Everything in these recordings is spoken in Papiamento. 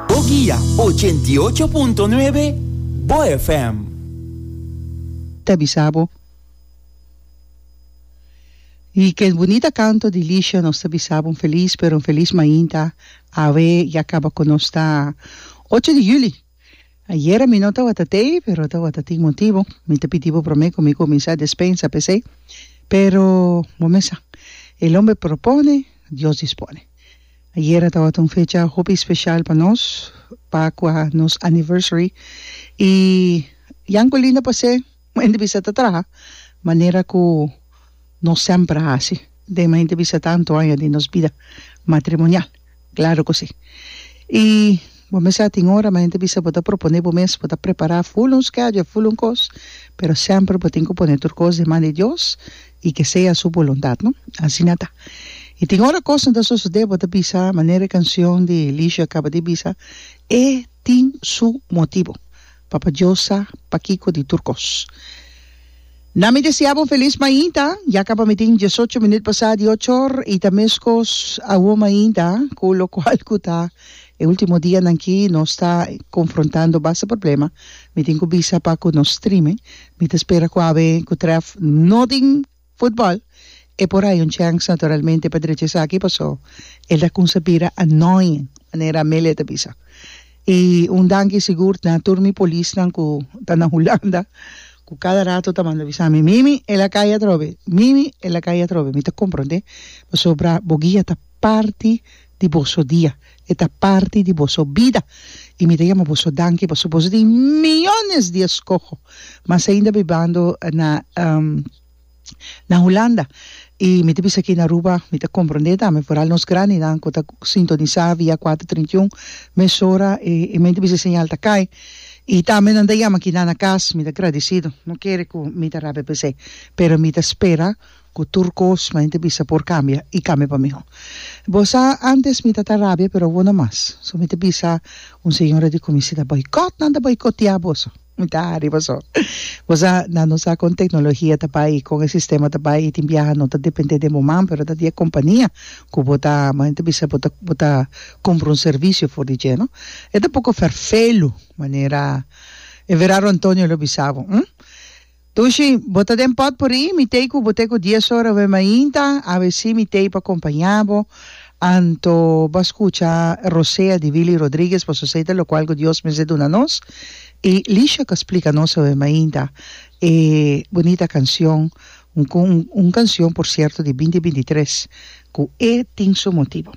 Bo guia ochenta i ocho punto nuebe Bo FM. Ta bisa bo di ke bunita kanto di Lisha nos ta bisa bo un felis pero un felis mainta awe ya kaba ku nos ta ocho di juli. Ayera mi no tawata tei pero tawata tin motibu mi ta pidi bo prome cu mi cuminsa despensa pesey pero bo mesa el homber propone Dios dispone ayera tawata un fecha hopi special pa nos pa cua nos anniversary y Yanculinda Posse. Un hende bisa ta traha manera ku nos semper a hasi. Den un hende bisa tantu aña di nos bida matrimonial. Klaru ku si. I bo mes a tin ora un hende bisa bo ta proponé bo mes bo ta prepará ful un schedule, ful un kos, pero semper bo tin ku pone tur kos di man di Dios i ke sea su boluntat, no? Asina ta. I tin ora kos no ta sosodé bo ta bisa manera e kansion di Lisha kaba di bisa, E tin su motibu. Papa Dios sa pakico di tur cos. Na mi desea bo felis mainta, ya caba mi tin diesocho minuut pasá di ochor y ta mescos awo mainta cu locual cu ta e ultimo dianan ki nos ta confrontando basta problema, mi tin cu bisa pa cu nos streaming, mi ta spera cu awe cu tref no tin. Futbòl, E por haya un chèns naturalmente pa drecha esaki pasó el ta kumsa bira annoying, manera Amelia ta bisa. I un danki sigur na tur mi polisnan ku ta na Hulanda ku kada rato ta manda bisa mi, Mimi, el a kai atrobe, Mimi, el a kai atrobe. Mi ta komprondé, pasobra bo guia ta parti. di boso dia, e ta parti di boso bida, i mi ta yama boso danki pasobra boso tin miyones di eskoho, mas ainda bibando na na Hulanda, i mi ta bisa aki na Aruba mi ta komprondé tambe foral nos grandinan ku ta sintonisá via kuater trinta i un mesora e e men ta bisa e señal ta kai, i tambe nan ta yama aki nan na kas, mi ta gradisido, no kere ku mi ta rabia p'esei, pero mi ta spera. Ku tur kos mi ta bisa por kambia i kambia pa mihó. Bo sa antes mi ta ta rabia pero awo no mas. So mi ta bisa un señora di komisida boikot nan ta boikotiá boso. Mi ta hari boso. Bo sa nan no sa kon teknologia ta bai kon e sistema ta bai i tin biaha no ta dependé den bo man pero ta di e kompania ku bo ta mi ta bisa bo ta bo ta kumpra un servisio for di dje no. E ta poko ferfelu manera e Verardo Antonio lo bisa bo. Tushi, bo ta den pòt por i? Mi t'ei ku bo te ku dies ora wen mainta, abecé mi t'ei pa kompañá bo. Anto bo a skucha Rosea di Willy Rodriguez pa sosei ta lokual ku Dios mester duna nos, i Lisha ta splika nos awen mainta e bunita kansion, un kansion por sierto di binti binti tres, ku E tin su motibu.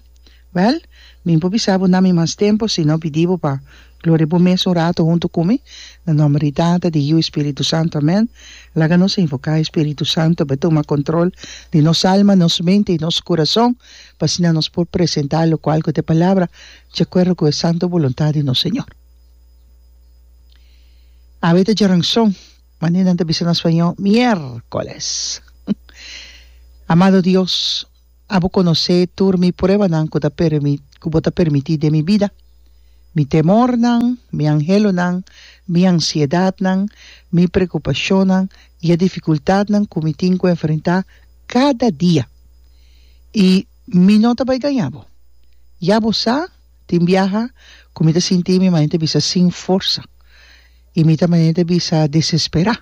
Wèl, mi por bisa bo nami mas tempu si no pidi bo pa gloria bo mes un ratu huntu ku mi, na nòmber di Tata, di Yiu i Spiritu Santu. Amèn. Laga nos invoká e Spiritu Santu pa e tuma kòntròl di nos alma, nos mente i nos kurason, pa asina nos por presentá lokual ku ta e Palabra di akuerdo ku e santu boluntat di nos Señor. Awe ta djaranson, manera nan ta bisa na spañó, miérkoles. Amado Dios. Abo conoce tur mi pruebanan cu ta permit cu bo ta permiti den mi bida, mi temornan, mi anhelonan, mi ansiedadnan, mi preocupacionnan y e dificultadnan cu mi tin cu enfrenta cada dia. Y mi no ta bay daña bo. Ya bo sa, tin biaha cu mi ta sinti mi manera ta bisa sin forsa y mi ta manera ta bisa desespera.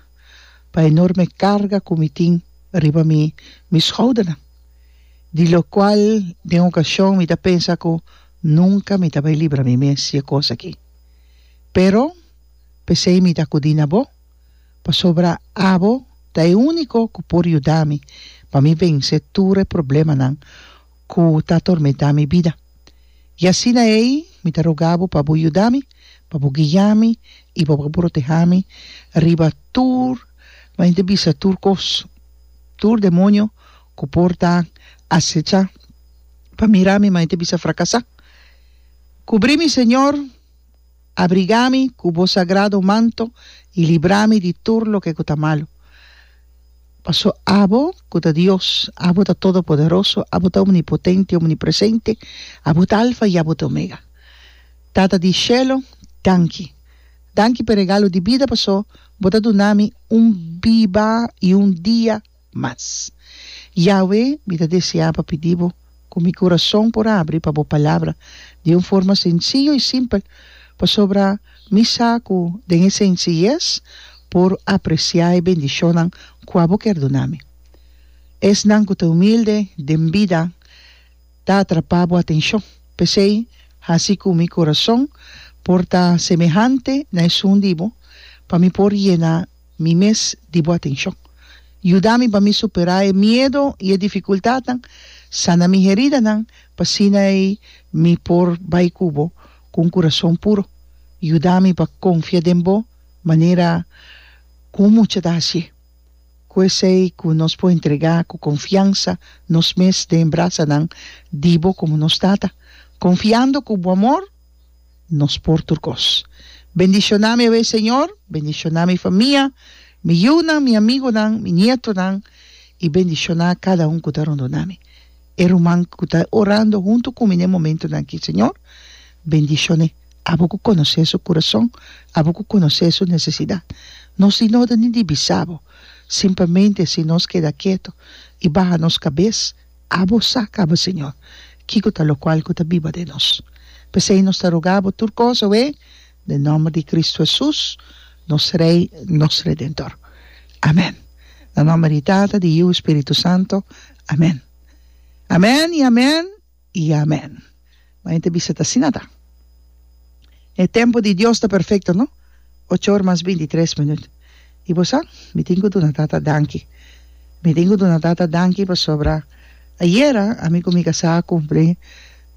pa enorme carga cu mi tin riba mi mi schoudernan, di locual den ocasion mi ta pensa cu nunca mi ta bay libra mi mes di e cos aki. Pero pesey mi ta acudi na bo, pasobra abo ta e unico cu por yuda mi pa mi vence tur e problemanan, ku ta atormentá mi bida. I asina ei mi ta rogá bo pa bo yuda mi, pa bo guiá mi i pa bo protehá mi riba tur, mi a henter bisa tur kos, tur demonio ku por ta asechá pa mira mi, mi a henter bisa frakasá. Kubrí mi, Señor. Abrigami ku Bo sagrado manto i librami di tur loke ku ta malu. Paso Abo ku ta Dios, Abo ta Todopoderoso, Abo ta Omnipotente, Omnipresente, Abo ta Alfa i Abo ta Omega. Tata di shelu, danki. Danki p'e regalo di bida paso Bo ta dunami un biba i un dia. mas. Yahwe, mi ta deseá pa pidi bo ku mi kurason por abri pa bo Palabra di un forma sensiyo i simpel, pasobra mi sa ku den e sensiyes por apresiá e bendishonnan kua bo kier duna mi. Esnan ku ta humilde den bida ta atrapá bo atenshon. P'esei, hasi ku mi kurason por ta semehante na esun di bo, pa mi por yená. Mi mes di bo atenshon. Yuda mi pa mi superá e miedo i e difikultatnan. Sana mi heridanan, pa asina ei mi por bai ku bo ku un kurason puro. Yuda mi pa konfia den bo manera ku un mucha ta hasié. Ku esei ku nos por entregá ku konfiansa nos mes den brasanan di bo komo nos Tata, konfiando ku bo amor. nos por tur kos. Bendishoná mi awe, Señor, bendishoná mi famia, mi yunan, mi amigunan, mi nietonan, i bendishoná kada un ku ta rondona mi. E ruman ku ta orando huntu ku mi na e momentunan aki, Señor, bendishoné. Abo ku konosé su kurason, abo ku konosé su nesesidat. Nos di noda ni di bisa Bo, simplemente si nos keda ketu i baha nos kabes, Abo sa, caba Señor, kico ta locual cu ta biba den nos. P'esey nos ta roga Bo tur cosa, owe, den nomber di Cristo Jesús, nos Rey, nos Redentor. Amen. Na nomber di Tata, di Yiu i Spiritu Santo. Amen. Amen i amen i amen. Ma hende bisa ta asina ta. E tempu di Dios ta perfecto no? Ocho or mas binti tres minut. Y bo sa? Mi tin cu duna Tata danki. Mi tin cu duna Tata danki pasobra ayera ami cu mi casá a cumpli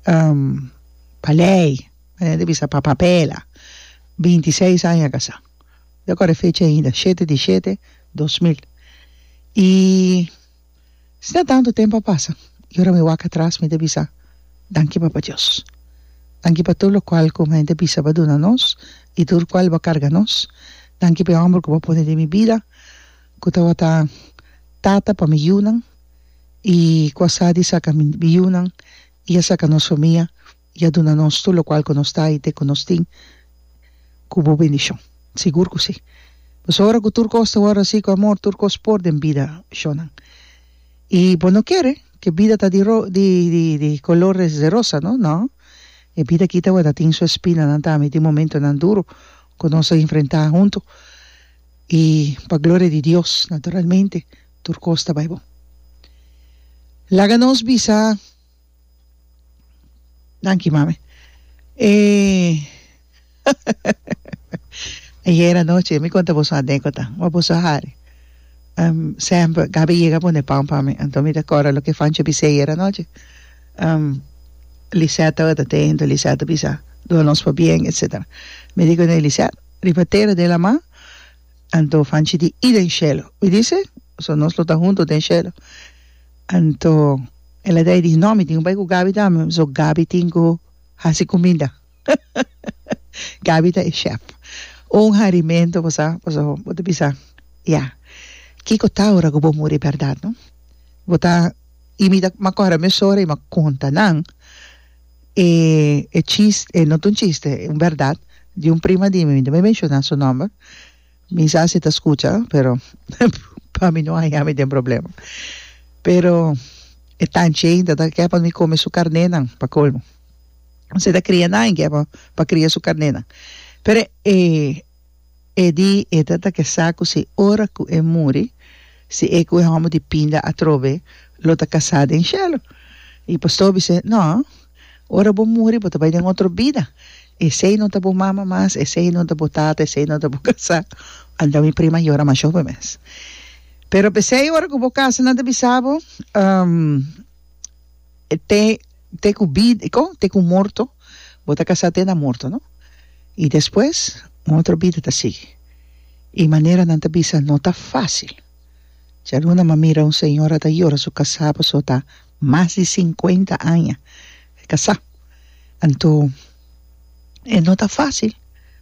pa ley, e hende bisa pa papela, binti seis aña casá. Mi ta core e fecha ainda, shete di shete dos mil. Y. Sinta tantu tempu a pasa i ora mi wak atras mi ta bisa, Danki Papa Dios. Danki pa tur lokual ku hende bisa bo a duna nos i tur kual bo a karga nos. Danki pa e hòmber ku bo a pone den mi bida ku tabata tata pa mi yunan i ku a sa di saka mi yunan i a saka nos famia. i a duna nos tur lokual ku nos ta i te ku nos tin ku bo bendishon. Sigur ku si. Pasobra ora ku tur kos ta wòrdu hasi ku amor, tur kos por den bida shonnan. I bo no kere ke bida ta di ro di di di kolor des de rosa no. No. E bida aki tabata tin su espinanan tambe, tin momentunan duru ku nos a enfrentá huntu. I pa gloria di Dios, naturalmente tur kos ta bai bon. Laga nos bisa. Danki mami. Eh, ayer anoche mi conta boso anécdota, ma boso hari. Um, Samper, Gaby yega pone pan pa mi, anto mi ta corda loke Fancho bis'é ayer anoche. Um, Lisette tabata dentro, Lisette a bisa, Duna nos pa bien, etcetera. Mi di cun'é, Lisette, riba tera den laman, anto Fanchi di, y den shelo. Mi dice, so nos lo ta hunto den shelo. Anto el a dai di no mi tin ku bai ku Gabi tambe so Gabi tin ku hasi kuminda Gabi ta e shèf un harimentu bo sa paso bo ta bisa ya kiko ta ora ku bo muri bèrdat no bo ta i mi ta mi a kòrè a mi sora i mi a konta nan e e chis e no ta un chiste un bèrdat di un prima di mi mi no ta menshoná su nòmber Mi sa si ta scucha pero pa mi no haña mi den problema pero e tancheen ta ta ke pa mi come su carnenan pa colmo si ta cria nan ke pa pa cria su carnenan pero e e di e ta ta ke sa cu si ora cu e muri si e cu e homber di pinda atrobe lo ta casa den cielo y pastor bisé no. Ora bo muri bo ta bai den otro bida, esei no ta bo mama mas, esei no ta bo tata, esei no ta bo kasá. Anda mi prima yora masho pa mes. Pero p'esei ora ku bo kasa nan ta bisa bo te te ku bid kon te ku morto bo ta kasá te na morto no, i despues un otro bida ta sigui. I manera nan ta bisa no ta fásil. Djaluna m'a mira un señora ta yora su kasá pasobra ta mas di sinkuenta aña e kasá. Anto e no ta fásil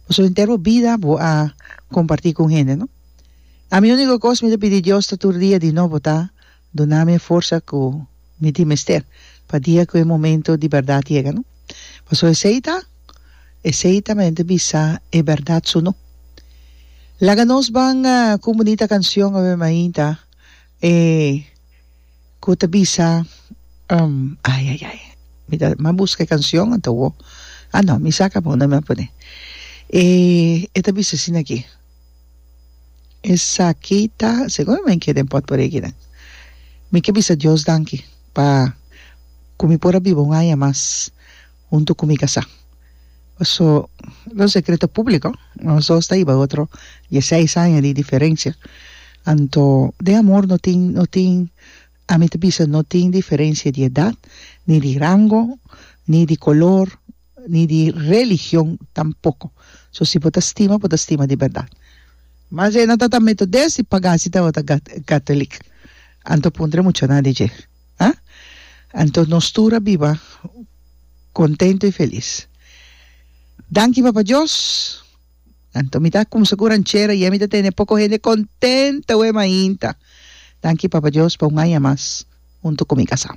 pasobra henter bo bida bo a kompartí ku un hende no. Ami úniko kos mi ta pidi Dios ta tur dia di nobo ta duna mi e forsa ku mi tin mester pa dia ku e momento di bèrdat yega no. Pasobra esei ta esei ta men ta bisa e bèrdat su no. Laga nos ban kumbunita kanshon awe mainta e. Cu ta bisa, um, ay, ay, ay, mi ta, mi a busca e cancion, anta wo, ah, no, mi saca bo, no mi a pone. E, e ta bisa asina aki, Esaki ta, seguramente den pot por yegi nan. Mi ke bisa Dios danki pa cu mi por a biba un aña mas. Huntu ku mi kasá. Paso lo e sekreto públiko, nos dos ta hiba otro dieseis aña di diferensia. Anto den amor no tin, no tin, ami ta bisa no tin diferensia di edat, ni di rango, ni di kolor, ni di religion tampoko. So si bo ta stima, bo ta stima di bèrdat. Mas e no ta ta metodes di pagá si tabata gat, gatolik. Anto puntra e muchanan di dje. a? Anto nos tur a biba contento y feliz. Danki Papa Dios! Anto mi ta cumsa cu ranchera y mi ta tene poco hende contento aweh mainta. Danki Papa Dios pa un aña mas hunto cu mi casa.